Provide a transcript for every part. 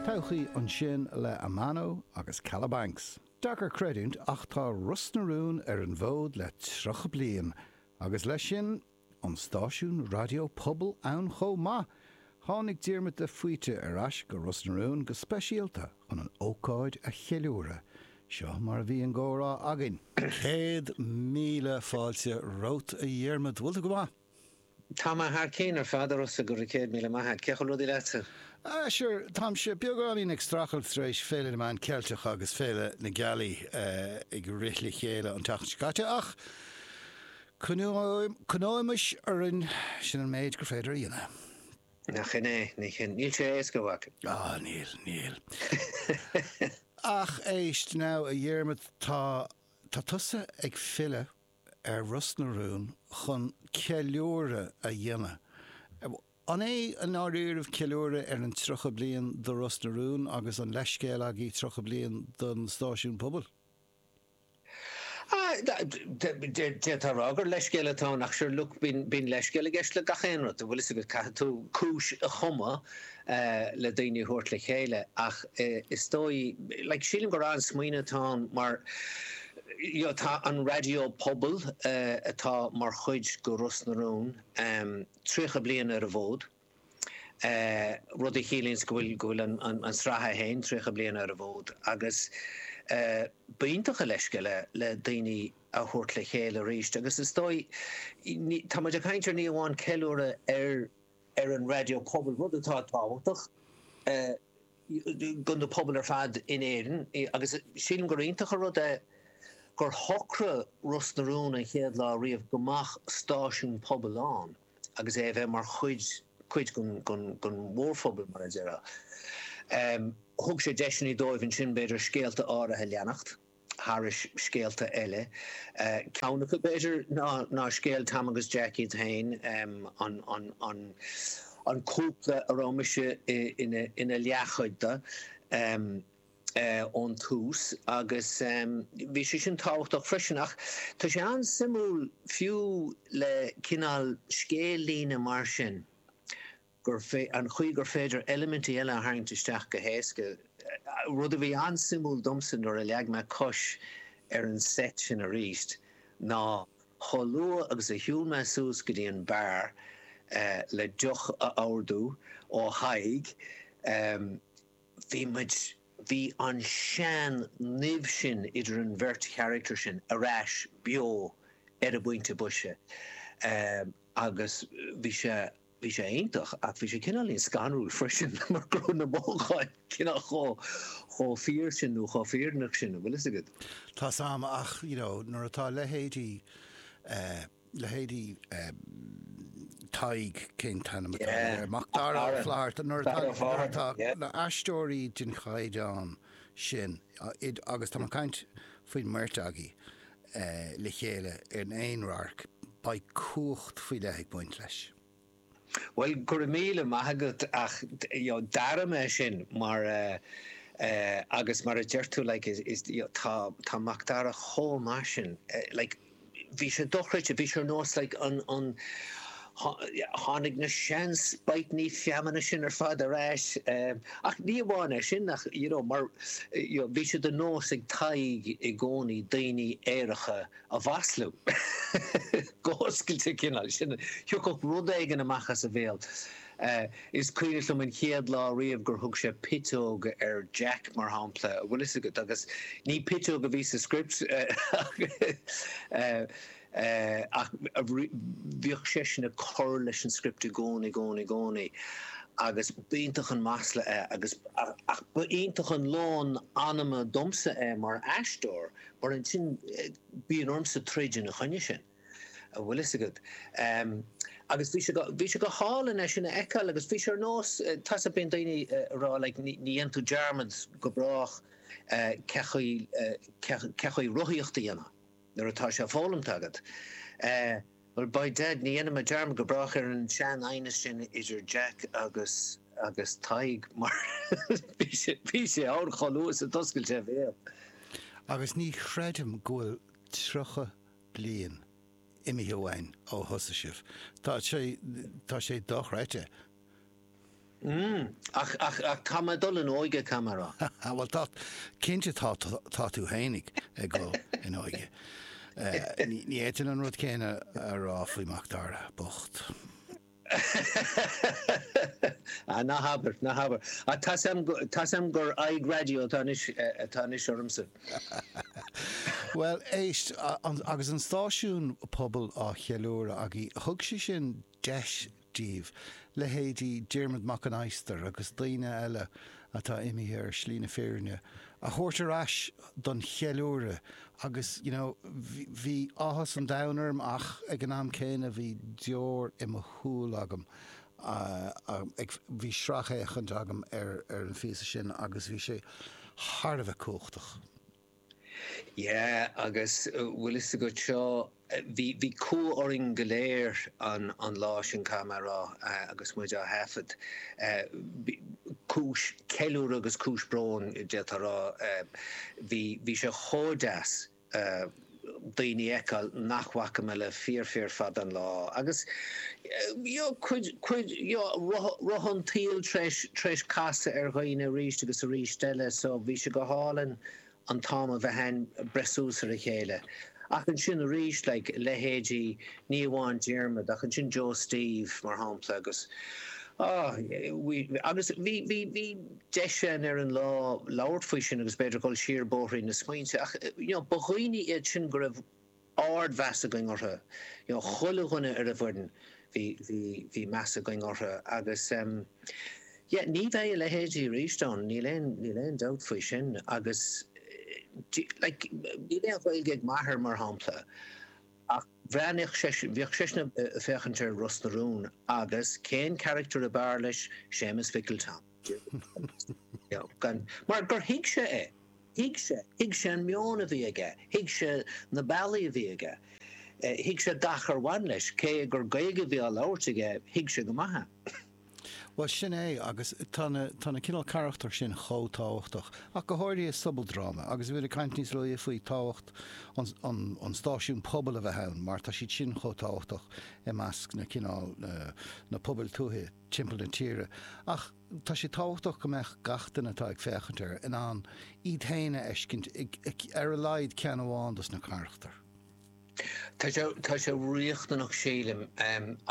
Todhchaí ansin le Amano agus Calabanx. Deacair creidiúint ach tá Ros na Rún ar an bhfód le 30 bliain agus leis sin, an stáisiún raidió pobail ann chomh maith! Tháinig Diarmuid de Faoite ar ais go Ros na Rún go speisialta chun an ócáid a cheiliúradh. Seo mar a bhí an comhrá againn. Céad míle fáilte romhat a Dhiarmuid, bhfuil tú go maith? Tá mé thar cinn ar fad, a Rossa, go raibh céad míle maith a't. Cén chaoi bhfuil rudaí leatsa? Ah sure, táimse beagáinín ag strachailt tar éis Féile na Meán Ceilteacha agus Féile na Gealaí ag rith le chéile an tseachtain seo caite ach coinneoimid orainn, sin an méid gur féidir a dhéanamh. Nach shin é? 'S é sin. Níl sé éasca, a mhac. Á, níl, níl. Ach éist, now, a Dhiarmaid, tá, tá tusa ag filleadh. ar Ros na Rún chun ceiliúradh a dhéanamh. An é i ndáiríribh ceiliúradh ar an 30 bliain de Ros na Rún agus an leithscéal agaibh 30 bliain den stáisiún pobail? D'fhéadfá a rá gur leithscéal atá ann ach sure look bíonn leithscéal i gceist le gach aon rud, an bhfuil fhios agat, caithfidh tú cúis a chumadh le daoine a thabhairt le chéile ach is dóigh, like, sílim gur an-smaoineamh atá ann mar you know tá an raidió pobail atá mar chuid de Ros na Rún tríocha bliain ar an bhfód, rud a chiallaíonns go bhfuil, go bhfuil an tsraith féin tríocha bliain ar an bhfód agus b'iontach an leithscéal é le daoine a thabhairt le chéile arís agus is dóigh, ní, tá muid ag caint ar ní amháin ceiliúradh ar ar an raidió pobail, rud atá tábhachtach do na pobail ar fad in Éirinn agus sílim gur iontach an rud é gur shocraigh Ros na Rún an chéad lá riamh go mbeadh stáisiún pobail ann agus é a bheith mar chuid chuid den mhórphobal, mar a déarfá. Thug sé deiseanna dóibh ansin, b'fhéidir, scéalta áirithe a leanacht. thar scéalta eile. Ceann acu, b'fhéidir, ná scéal Tom agus Jack iad féin, an cúpla a raibh mise ina leathchuid de ón tús, agus bhí sé sin tábhachtach freisin. Ach tá sé an-suimiúil fiú le cineál scéal-líne mar sin, gur féidir, an chaoi gur féidir eilimintí eile a tharraingt isteach go héasca, rud a bhí an-suimiúil domsa nuair a leag mé cois ar an seit sin arís, ná chomh luath agus a shiúil mé suas go dtí an beár le deoch a ordú ó Thadhg, bhí muid, bhí an sean nimh sin idir an bheirt charactar sin ar ais beo ar an bpointe boise agus bhí sé. Bhí sé iontach ach bhí sé cineáilín scanrúil freisin mar go raibh na mothúcháin cineál chomh, chomh fíor sin nó chomh fírinneach sin, an bhfuil fhios agat. Tá 's a'm ach you know nuair atá leithéidí eh, leithéidí eh Tadhg, cén t-ainm atá Yeah, air, Mac Mac Dara Ó Dara, Fátharta, nuair atá, Dara nuair Fátharta, atá yeah. na haisteoirí den chaighdeán sin, agus tá mé ag caint faoin mbeirt agaí, le chéile in aon radharc, beidh cumhacht faoi leith ag baint leis. Bhuel, go raibh míle maith agat ach d'airigh mé sin mar agus mar a deir tú like is tá Macdara chomh maith sin like bhí sé dochreidte, bhí sé ar nós like an, an, Tháinig na sean spiteannaí feamainne sin ar fad ar ais ach ní amháin é sin ach you know mar you know bhí sé de nós ag Tadhg i gcónaí daoine aeracha a mhaslú go hoscailte cineál sin thiocfadh rud éigin amach as a bhéal. Is cuimhneach liom an chéad lá riamh gur thug sé piteog ar Jack mar shampla bhfuil fhios agat agus ní piteog a bhí sa script ach Ach bhíodh seisean ag cur leis an script i gcónaí, gcónaí, gcónaí agus ba iontach an masla é agus. Ach ba iontach an lón anama domsa é mar aisteoir mar ansin bíonn ormsa troid ina choinne sin, a bhfuil fhios agat. Agus bhí sé, bhí sé go hálainn é sin a fheiceáil agus bhí sé ar nós, tá sa, bíonn daoine ag rá like ní dhéanann tú dearmad go brách cén chaoi, cén chaoi rothaíocht a dhéanamh. Nuair atá sé foghlamtha agat, eh, well, by Dad, ní dhéanfaidh mé dearmad go brách ar an sean aighneas sin idir Jack agus, agus Tadhg, mar bhí sé, bhí sé ann chomh luath is a d'oscail sé a bhéal. Agus ní chreidim go bhfuil tríocha bliain imithe uainn ó thosaigh sibh. Tá sé, tá sé dochreidte. Ach, ach, ach tá mé ag dul in óige, caithfidh mé a rá. Á, bhuel, tá, cinnte tá, tá tú fhéinig ag dul in óige. Ní fhéadfainn an rud céanna a rá faoi Macdara bocht. Á, ná habair, ná habair. Á, tá's a'm, tá's a'm gur aghaidh raidió atá anois, atá anois ormsa. Bhuel, éist, agus an stáisiún pobail á cheiliúradh againn, thug sé sin deis daoibh, leithéidí Diarmuid Mac an Adhastair agus daoine eile atá imithe ar shlí na fírinne, a thabhairt ar ais don cheiliúradh. Agus you know bhí áthas an domhain orm ach ag an am céanna bhí deor i mo shúil agam ag, bhí sracfhéachaint agam ar an phíosa sin agus bhí sé thar a bheith cumhachtach. Yeah agus bhfuil fhios agat seo, bhí, bhí cumha orainn go léir an, an lá sin caithfidh mé a rá agus muid á thaifead. Cúis ceiliúrtha agus cúis bróin d'fhéadfá a rá. Bhí, bhí sé chomh deas daoine a fheiceáil nach bhfaca mé le fíor fíor fada an lá Roth an tsaoil tréis casadh ar dhaoine arís agus arís eile so bhí sé go hálainn an t-am a bheith a'ainn breith suas ar a chéile. Ach ansin arís like leithéidí ní amháin Diarmaid ach ansin Joe Steve mar shampla agus ah agus bhí bhí bhí deis a'ainn ar an lá labhairt faoi sin agus b'fhéidir dhul siar bóithrín na smaointe ach you know ba dhaoine iad sin go raibh ard-mheas againn orthu. You know, chuile dhuine ar an bhfoireann, bhí, bhí, bhí meas againn orthu agus em. Yeah, ní bheidh a leithéidí arís ann, níl aon, níl aon dabht faoi sin agus do you, like, níl aon Ghaeilge ag m'athair mar shampla ach bhreathnaíodh seisean, bhíodh seisean a' féachaint ar Ros na Rún agus cén character ab fhearr leis, Séamus Mhicil Tom. Mar gur thuig sé é. Thuig sé. Thuig sé an meon a bhí aige. Thuig sé na bealaí a bhí aige. Thuig sé gach ar bhain leis. Cé gur Gaeilge a bhí á labhairt aige, thuig sé go maith é. Bhuel, sin é agus tá na, tá na cineál carachtar sin chomh tábhachtach, ach go háirithe i sobaldráma agus bhí mé ag caint níos luaithe faoi tábhacht an, an, an stáisiún pobail a bheith ann mar tá siad sin chomh tábhachtach i measc na cineál, na pobail tuaithe. timpeall na tíre, ach tá sé tábhachtach go mbeadh gach duine atá ag féachaint air in ann iad féin a fheiscint i ar a laghad ceann amháin dos na carachtair. Tá sé riachtanach sílim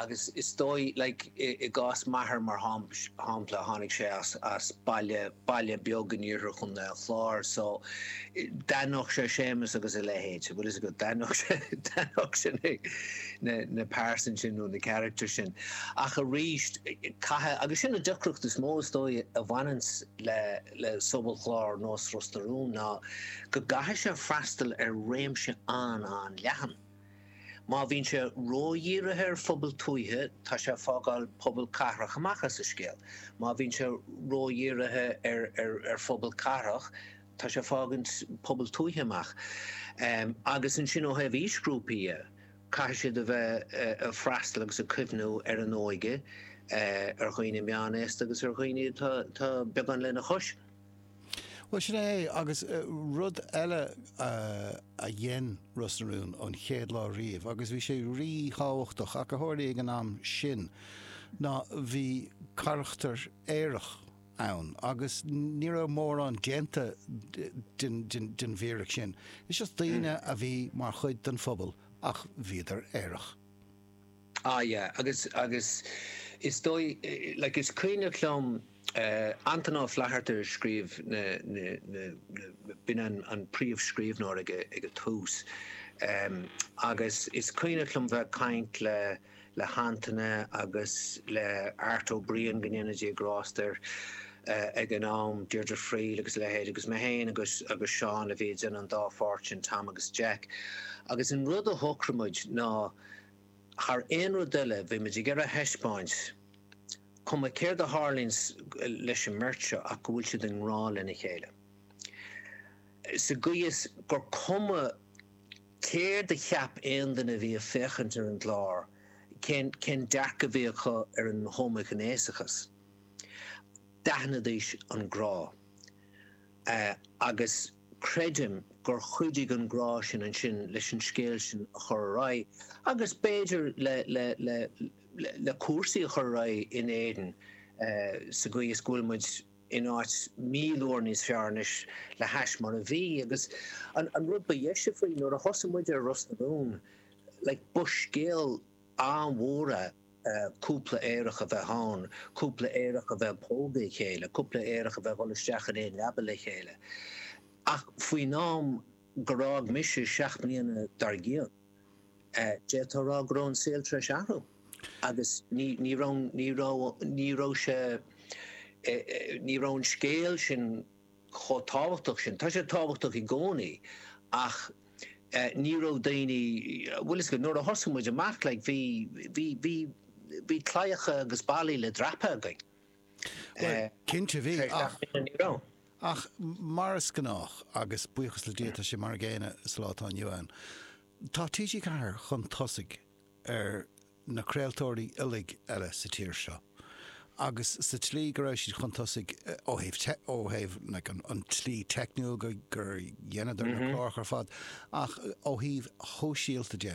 agus is dóigh like i gcás m'athair mar shampla tháinig sé as as baile baile beag in iarthar chontae an Chláir so d'aithneodh sé Séamus agus a leithéid bhfuil fhios agat d'aithneodh sé d'aithneodh seisean. na pearsain sin nó na carachtair sin. Ach arís, caithfidh, agus sin an deacracht is mó is dóigh a bhaineanns le sobalchlár nós Ros na Rún ná go gcaithfidh sé freastal ar réimse an-an-leathan. Má bhíonn sé ródhírithe ar phobal tuaithe, tá sé ag fágáil pobal cathrach amach as an scéal. Má bhíonn sé ródhírithe ar phobal cathrach, tá sé ag fágaint pobal tuaithe amach. Agus ansin ó thaobh aoisghrúpaí de, Caithfidh siad a bheith ag freastal agus ag cuimhniú ar an óige, ar dhaoine meánaosta agus ar dhaoine atá beagán lena chois. Bhuel, sin é, agus rud eile a dhein Ros na Rún ón chéad lá riamh, agus bhí sé rí-thábhachtach ach go háirithe ag an am sin, ná bhí carachtar aerach, ann agus ní raibh mórán déanta den bhfíric sin. Is is daoine a bhí mar chuid den phobal ach bhíodar aerach. Ah yeah agus agus is dóigh like is cuimhneach liom Antaine Ó Flatharta a scríobh na na na na b'in an an príomhscríbhneoir ag ag an tús agus is cuimhneach liom bheith ag caint le le hAntaine agus le Art Ó Briain, go ndéana Dia grásta air, ag an am, Deirdre Friel agus a leithéid, agus mé féin agus agus Seán a bhí ag déanamh an dá pháirt sin, Tom agus Jack. Agus an rud a shocraigh muid ná thar aon rud eile bhí muid ag iarraidh a thaispeáint, cuma céard a tharlaíonns leis an mbeirt seo, ach go bhfuil siad i ngrá lena chéile. Sa gcaoi is gur cuma. Céard a cheap aon duine a bhí ag féachaint ar an gclár? Cén dearcadh a bhí acu ar an homaighnéasachas? D'aithnidís an grá. Agus creidim gur chuidigh an grá sin ansin leis an scéal sin a chur ar aghaidh agus b'fhéidir le cúrsaí a chur ar aghaidh in Éirinn sa gcaoi is go bhfuil muid in áit míle uair níos fearr anois le hais mar a bhí agus an rud ba dheise faoi nuair a thosaigh muid ar Ros na Rún like ba scéal an-mhór é cúpla aerach a bheith ann, cúpla aerach a bheith ag pógadh a chéile, cúpla aerach a bheith ag dhul isteach in aon leaba le chéile ach faoin am gur fhág mise seacht mbliana dar gcionn. D'fhéadfá a rá go raibh an saol tar éis athrú agus ní raibh an, ní raibh, ní raibh sé, ní raibh an scéal sin chomh tábhachtach sin. Tá sé tábhachtach i gcónaí ach ní raibh daoine, bhuel is, nuair a thosaigh muid amach like bhí, bhí, bhí, bhí claíocha agus ballaí le dreapadh againn. Bhuel, cinnte bhí, ach. Ach mar is gnách, agus buíochas le Dia tá sé mar an gcéanna sa lá atá inniu ann, tá TG4 chun tosaigh ar na craoltóirí uilig eile sa tír seo. Agus sa tslí go raibh siad chun tosaigh ó thaobh tech, ó thaobh like an tslí teicniúil go, gur dheineadar na cláracha ar fad, ach ó thaobh shóisialta de,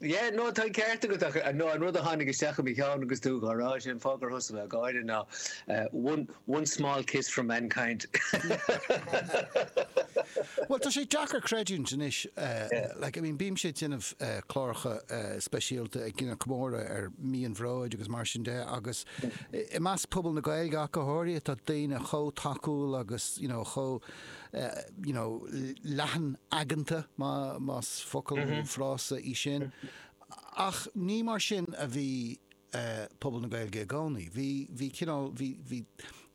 Yeah, no, tá an ceart agat ach no, an rud a tháinig isteach i mo cheann agus tú dhá rá sin, fáth gur thosaigh mé ag gáire ná one, one small kiss from mankind. Bhuel, tá sé deacair creidiúint anois, like, I mean, bímse ag déanamh cláracha speisialta ag déanamh comóradh ar mhí an bhróid agus mar sin de agus i measc pobal na Gaeilge ach go háirithe, tá daoine chomh tacúil agus, you know, chomh you know, leathan aigeanta, más focal nó frása é sin. Ach ní mar sin a bhí pobal na Gaeilge i gcónaí. Bhí, bhí cineál, bhí, bhí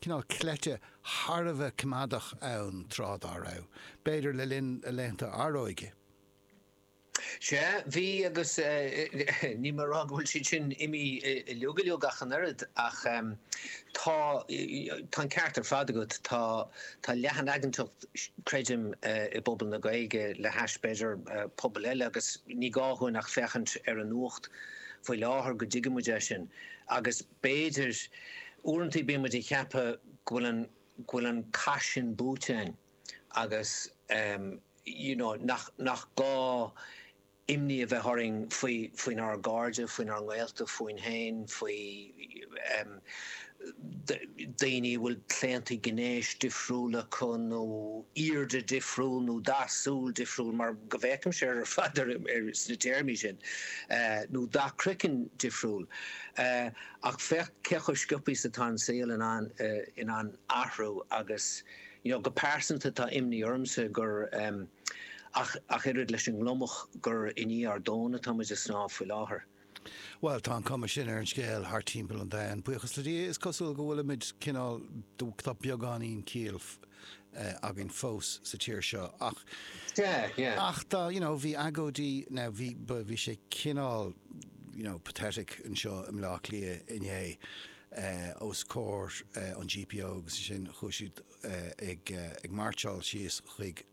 cineál cleite thar a bheith coimeádach ann tráth dá raibh, b'fhéidir le linn a laethanta aeróige. Sea, bhí agus níl mé a rá go bhfuil siad sin imithe uiliog uiliog ach an oiread ach tá an ceart ar fad agat, tá leathanaigeantacht creidim i bpobal na Gaeilge le hais b'fhéidir pobail eile agus ní gá dhúinn ach féachaint ar an nuacht faoi láthair go dtuigeann muid é sin agus b'fhéidir uaireantaí bíonn muid ag ceapadh go bhfuil an cath sin buaite againn. agus you know nach nach gá imní a bheith orainn faoi faoinár gcairde, faoinár ngaolta, fúinn féin, faoi em daoine a bhfuil claontaí gnéis difriúil acu nó aoirde difriúil nó dath súl difriúil mar go bhféachaimse ar fad ar ar sna téarmaí sin eh nó dath croiceann difriúil eh ach féach cé chomh sciobtha is atá an saol in ann eh in ann athrú agus You know, go pearsanta tá imní ormsa gur, em, ach, ach oiread leis an ngliomach, gur i ndiaidh ár dtóna atá muid ag snámh faoi láthair. Bhuel, tá an cuma sin ar an scéal thart timpeall an domhain. Buíochas le Dia, is cosúil go bhfuilimid cineál, tá beagáinín ciall, eh, againn fós sa tír seo ach, Yeah, yeah. ach tá, you know, bhí agóidí, now bhí, ba, bhí sé cineál, you know, pathetic anseo i mBleá Cliath inné. os comhair an GPO agus ansin chuaigh siad ag máirseáil síos chuig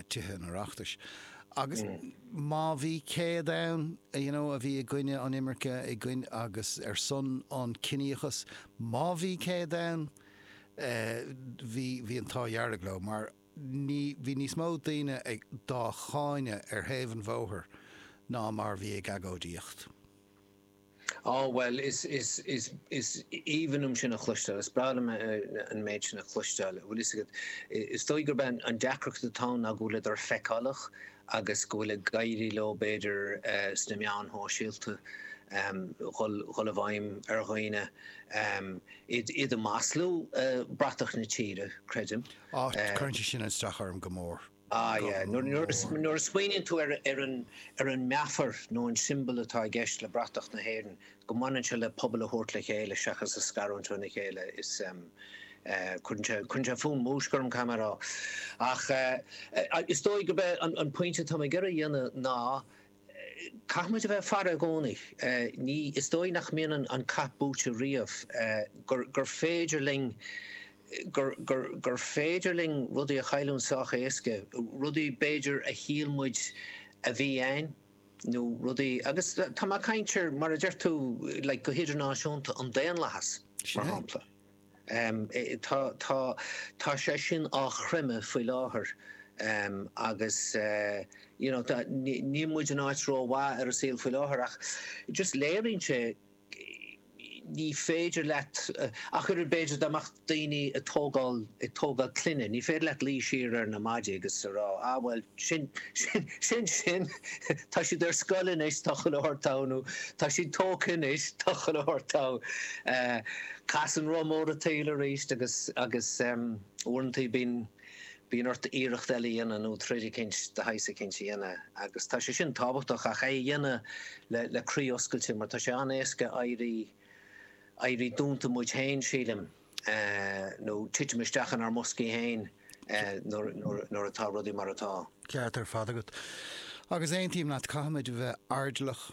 Tithe an Oireachtais agus má bhí 100 ann you know a bhí i gcoinne an imirce i gcoinne agus ar son an ciníochas má bhí 100 ann bhí bhí an t-ádh dearg leo mar bhí níos mó daoine ag dá gcáineadh ar thaobh an bhóthair ná mar bhí ag agóidíocht. Á, bhuel, is, is, is, is aoibhinn liom sin a chloisteáil, is breá liom an méid sin a chloisteáil. Bhuel, is agat, is dóigh gurb é an deacracht atá ann ná go bhfuil siad feiceálach agus go bhfuil ag éirí leo, b'fhéidir, sna meáin shóisialta, dhul, dhul i bhfeidhm ar dhaoine, iad, iad a mhaslú, bratach na tíre, creidim. Á, cuireann sé sin an-straidhn orm go mór. Ah yeah, nuair a smaoiníonn tú ar an meafar nó an siombal atá i gceist le bratach na hÉireann, go mbaineann sé le pobail a thabhairt le chéile seachas a scarúint óna chéile, is ehm, eh, cuireann sé fúm, múisc orm caithfidh mé a rá. Ach eh, is dóigh gurb é an pointe atá mé ag iarraidh a dhéanamh ná, Caithfidh muid a bheith ag faire i gcónaí. Ní, is dóigh nach mbíonn an cath buaite riamh, gur, gur féidir linn, gur, gur, gur féidir linn rudaí a chailliúint sách éasca, rudaí b'fhéidir a shíl muid a bhí a'ainn nó rudaí agus tá mé a' caint ar mar a deir tú like go hidirnáisiúnta an daonlathas mar shampla. Tá, tá, tá sé sin á chreimeadh faoi láthair agus you know níl muid in áit rómhaith ar an saol faoi láthair ach just léiríonn sé, ní féidir leat ach oiread b'fhéidir le daoine ag tógáil, ag tógáil clainne, ní féidir leat luí siar ar na maidí agus a rá, ah bhuel, sin, sin, sin, sin, tá siad ar scoil anois, tá chuile shórt togha, nó tá siad tógtha anois, tá chuile shórt togha. Eh, casann roth mór an tsaoil aríst agus, agus em, uaireantaí bíonn, bíonn ort iarracht eile a dhéanamh nó troid eicínt de shaghas eicínt a dhéanamh agus tá sé sin tábhachtach ach é a dhéanamh le, le croí oscailte mar tá sé an-éasca éirí, éirí dúnta muid féin sílim. nó titeam isteach inár mboscaí féin nuair atá rudaí mar atá. An ceart ar fad agat. Agus aontaím leat, caithfimid a bheith airdeallach,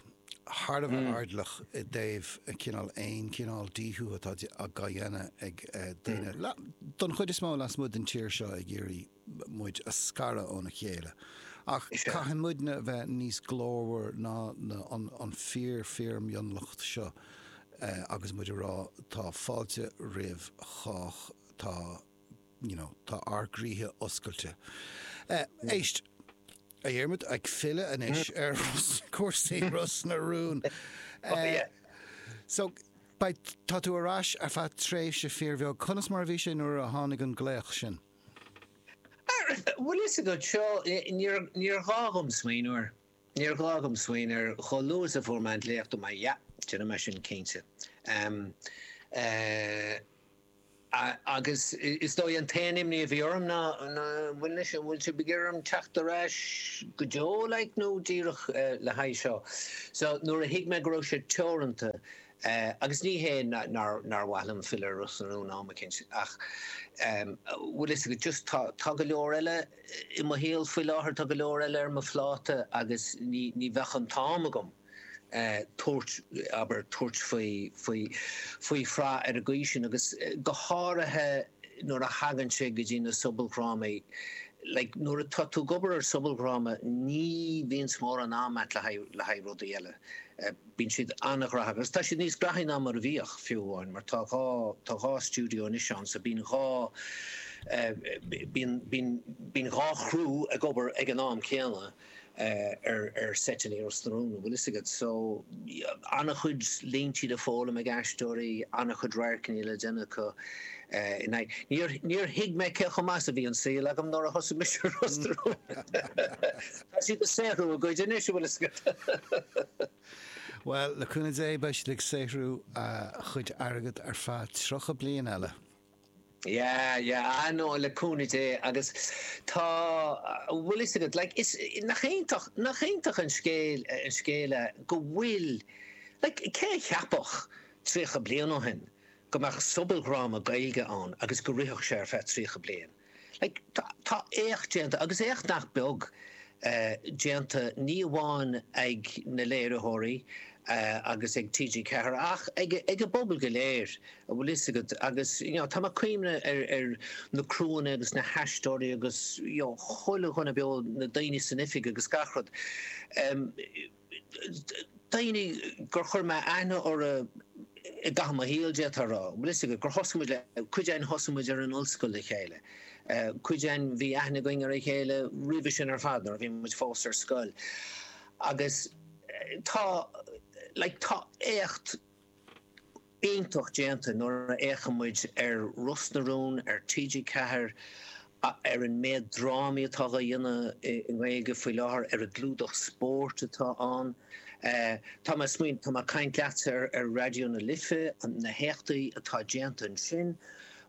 thar a bheith airdeallach i dtaobh cineál aon chineál díothú atá dhá dhéanamh ag daoine, don chuid is mó, lasmuigh den tír seo ag iarraidh. muid a scaradh óna chéile. Ach caithfidh muidne a bheith níos glórmhar ná an fíor fíor mhionlach seo agus muid a rá tá fáilte roimh chách tá you know tá ár gcroíthe oscailte. Éist, a Dhiarmaid, ag filleadh anois ar chúrsaí Ros na Rún. Oh yeah. So beidh tá tú ar ais ar feadh tréimhse fíor bheag. Conas mar a bhí sé nuair a tháinig an glaoch sin? Bhfuil fhios agat, seo, níor ghá dhom smaoineamh air, níor ghá dhom smaoineamh air, chomh luath is a fuair mé an glaoch, dúirt mé, ah, yeah, déanfaidh mé sin cinnte. Agus is dóigh an t-aon imní a bhí orm ná an bhfuil sibh ag iarraidh orm teacht ar ais go deo, like, nó díreach le haghaidh seo? So, nuair a thuig mé go raibh sé teoranta. Agus ní hé nár mhaith liom filleadh ar Ros na Rún am eicínt, ach bhfuil fhios agat, just tá, tá go leor eile i mo shaol faoi láthair, tá go leor eile ar mo phláta agus ní, ní bheadh an t-am agam tabhairt, abair, tabhairt faoi, faoi, faoi shraith ar an gcaoi sin agus go háirithe nuair a thagann sé go dtí na sobaldhrámaí, like, nuair atá tú ag obair ar sobaldhráma ní bhíonns mórán am a'at le haghaidh, le haghaidh rudaí eile. Bíonn siad an-ghnóthach agus tá siad níos gnóthaí ná mar a bhíodh, fiú amháin, mar tá dhá, tá dhá stiúideo anois ann so bíonn dhá eh, bíonn, bíonn, bíonn dhá chriú ag obair ag an am céanna eh, ar, ar seiteanna i Ros na Rún, an bhfuil fhios agat. So, an-chuid líntí le foghlaim ag aisteoirí, an-chuid radharcanna le déanamh acu eh, in aghaidh, níor, níor thuig mé cé chomh maith is a bhí an saol agam nuair a thosaigh mise i Ros na Rún! Tá siad ag saothrú a gcuid anois, an bhfuil 'fhios agat. Bhuel, le cúnamh Dé, beidh siad ag saothrú a gcuid airgid ar feadh tríocha bliain eile. Yeah, yeah, ah no, le cúnamh Dé agus tá, an bhfuil 'fhios agat, like, is, nach iontach, nach iontach an scéal, an scéal é go bhfuil, like, cé a cheapfadh tríocha bliain ó shin go mbeadh sobaldhráma Gaeilge ann agus go rithfeadh sé ar feadh tríocha bliain? Tá éacht déanta, agus éacht nach beag déanta, ní amháin ag na léiritheoirí agus ag TG4 ach ag an bpobal go léir, an bhfuil fhios agat, agus you know, tá mé ag cuimhneamh ar na criúanna agus na haisteoirí agus chuile dhuine beo, na daoine san oifig agus gach rud. daoine gur chuir mé aithne orthu i gcaitheamh mo shaoil, d'fhéadfá a rá. Bhuel, is ea, gur thosaigh muid le, cuid againn thosaigh muid ar an ollscoil le chéile, cuid againn bhí aithne againn ar a chéile roimhe sin ar fad nuair a bhí muid fós ar scoil. Agus tá, like, tá éacht. iontach déanta nuair a fhéachann muid ar Ros na Rún ar TG4, ar an méid drámaí atá á dhéanamh i nGaeilge faoi láthair, ar an gclúdach spóirt atá ann. Tá mé ag smaoineamh, tá mé ag caint leatsa ar Raidió na Life, na héachtaí atá déanta ansin.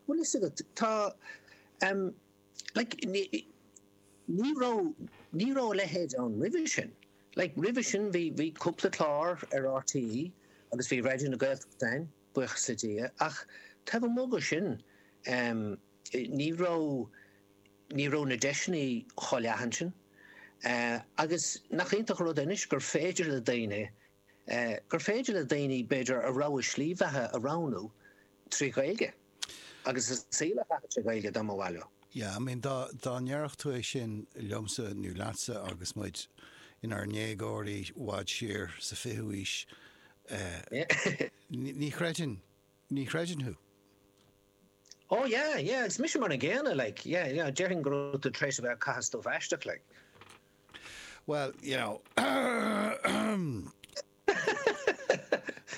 Bhfuil fhios agat, tá. Like, ní, ní raibh, ní raibh a leithéid ann roimhe sin. Like, roimhe sin bhí, bhí cúpla clár ar RTÉ agus bhí Raidió na Gaeltachta ann, buíochas le Dia, ach taobh amuigh de sin, em, ní raibh, ní raibh na deiseanna chomh leathan sin. Eh, agus nach iontach an rud é anois gur féidir le daoine gur féidir le daoine b'fhéidir a rogha slí bheatha a roghnú trí Ghaeilge agus a saol a chaitheamh trí Ghaeilge dá mba mhaith leo. Yeah, I mean, dá, dá ndéarfadh tú é sin liomsa nó leatsa agus muid inár ndéagóirí i bhfad siar sa 20ú aois, ní, ní chreidfinn, ní chreidfinn thú. Oh yeah, yeah, agus mise mar an gcéanna, like, yeah, yeah, déarfainn go raibh tú tar éis a bheith ag caitheamh stuif aisteach, like. Well, you know.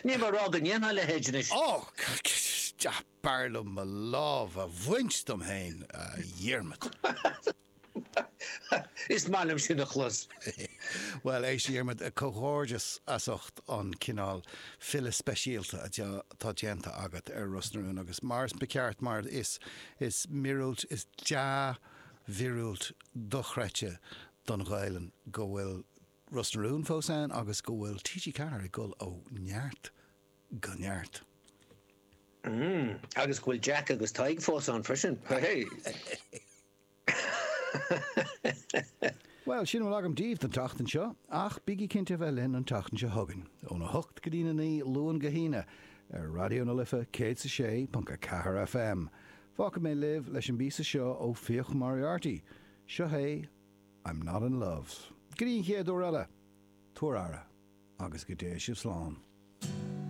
Ní móide go ndéanfaidh a leithéid anois. Ó, b'fhearr liom mo lámh a bhaint dom féin, a Dhiarmaid. Is maith liom sin a chlos. Bhuel, éist, a Dhiarmaid, comhghairdeas as ucht an cineál filleadh speisialta atá déanta agat ar Ros na Rún agus, mar is ceart, mar is míorúilt, is dea, mhíorúilt dochreidte don Ghaelainn go bhfuil Ros na Rún fós ann agus go bhfuil TG4 ag gol ó neart go neart. Mmm, agus go bhfuil Jack agus Tadhg fós ann freisin, hé! Bhuel, sin a bhfuil agam daoibh don tseachtain seo, ach bígí cinnte a bheith linn an tseachtain seo chugainn, ón 8 go dtí na 9, Luan go hAoine, ar Raidió na Life 106.4 FM. Fágfaidh mé libh leis an bpíosa seo ó Fiach Moriarty. Seo é I'm Not In Love. Go dtí an chéad uair eile, tugaigí aire agus go dtéigh sibh slán.